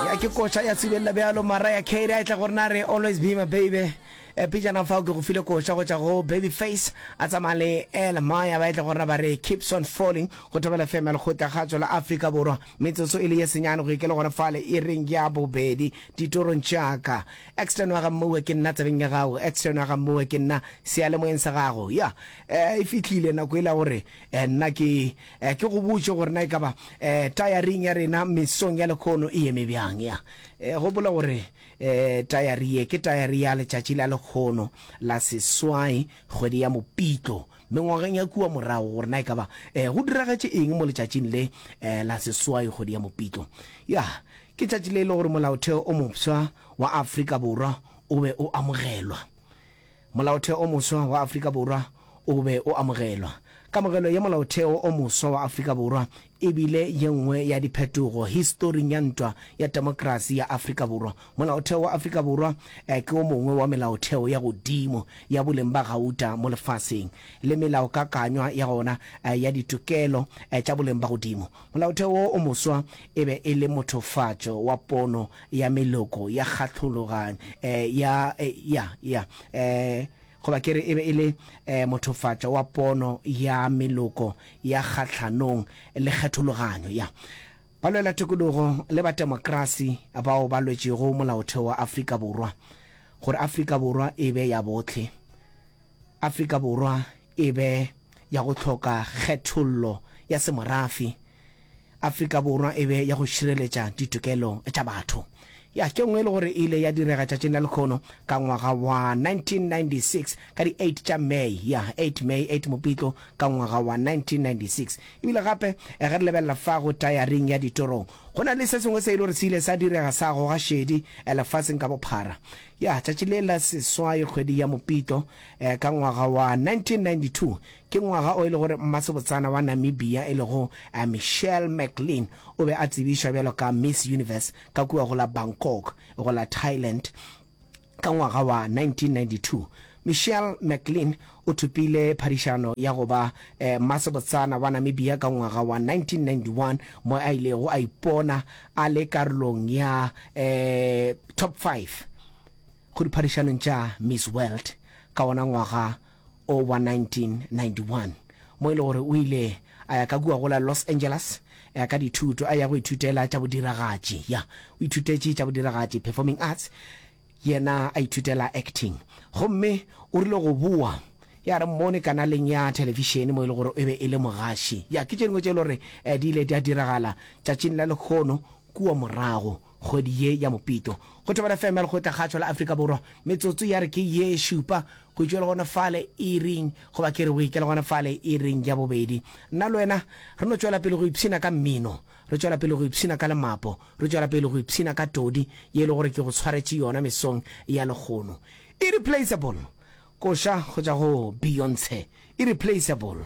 Ya ke koša ya sibelela bjalo Mariah Carey a etla go rena a re Always be my baby Eh, Pejana fao ke go file koša go tšwa go Babyface a tsamaya le Ella Maya ba etla go rena ba re Keeps on falling go Thobela FM ya Lekgotla Kgatšo la Afrika Borwa. Metsotso e le ye senyane go ikele gona fale ireng ya bobedi ditorong tša ka. Exton wa ga Mmoue ke nna tsebeng ya gago, Exton wa ga Mmoue ke nna seyalemoyeng sa gago. Ya, eh, e fihlile nako e la gore eh, nna ke Eh, ke go botše gore na e ka ba eh, tayaring ya rena mesong ya lekgono e eme bjang ya eh, gopola gore eh, tayari ye ke tayari ya letšatši la lekgono la seswai kgwedi ya mopitlo mengwageng ya kua morago gore na e ka ba eh, go diragetše eng mo letšatšing le eh, la seswai kgwedi ya mopitlo ya ke tšatši le e le gore molaotheo o mofsa wa afrika borwa o be o amogelwa Molaotheo o moswa wa Afrika Borwa o be o amogelwa. Kamogelo ya Molaotheo o moswa wa Afrika Borwa e bile ye nngwe ya diphetogo historing ya ntwa ya temokrasi ya Afrika Borwa. Molaotheo wa Afrika Borwa ke o mongwe wa melaotheo ya godimo ya boleng ba gauta mo lefaseng le melaokakanywa ya gona ya ditokelo tša boleng ba godimo. Molaotheo wo o moswa e be e le mothofatšo wa pono ya meloko ya kgahlolo ga e ya e ya ya e goba ke re e be e le e mothofatša wa pono ya meloko ya kgahlhanong le kgethologanyo ya balwela tokologo le ba temokrasi bao ba lwetšego molaotheo wa Afrika Borwa gore Afrika Borwa e be ya bohle Afrika Borwa e be ya go hloka kgethollo ya semorafi Afrika Borwa e be ya go šireletša ditokelo tša batho. Ya ke nngwe e le gore e ile ya direga tšatšing la lekgono ka ngwaga wa 1996 ka di 8 tša May, ya 8 May 8 Mopitlo ka ngwaga wa 1996. Ebile gape ge re lebelela fa go tayaring ya ditorong, go na le se sengwe se e le gore se ile sa direga sa goga šedi lefaseng ka bophara. Ya tšatši le la seswai kgwedi ya Mopitlo ka ngwaga wa 1992 Ke ngwaga o e le gore mmasebotsana wa Namibia e lego Michelle McLean o be a tsebišwa bjalo ka Miss Universe ka kua go la Bangkok go la Thailand ka ngwaga wa 1992. Michelle McLean o thopile phadišano ya go ba mmasebotsana wa Namibia ka ngwaga wa 1991 mo a ilego a ipona a le karolong ya Top Five go diphadišanong tša Miss World ka wona ngwaga o wa 1991, mo e le gore o ile a ya ka kua go la Los Angeles ya ka dithuto, a ya go ithutela tša bodiragatši. Ya, o ithutetše tša bodiragatši, performing arts, yena a ithutela acting. Gomme o rile go boa, ya re mmone kanaleng ya thelefišene mo e le gore e be e le mogaši. Ya, ke tše dingwe tše e le gore di ile di a diragala tšatšing la lekgono kua morago. Kgwedi ye ya Mopito, go Thobela FM Lekgotla Kgatšho la Afrika Borwa, metsotso ya re ke ye šupa go tšwe le gona fale iring, goba ke re o ikele gona fale iring ya bobedi. Nna le wena re no tšwela pele go ipshina ka mmino, re tšwela pele go ipshina ka lemapo, re tšwela pele go ipshina ka todi ye e le gore ke go tshwaretše yona mesong ya lekgono. Irreplaceable, koša go tšwa go Beyonce, Irreplaceable.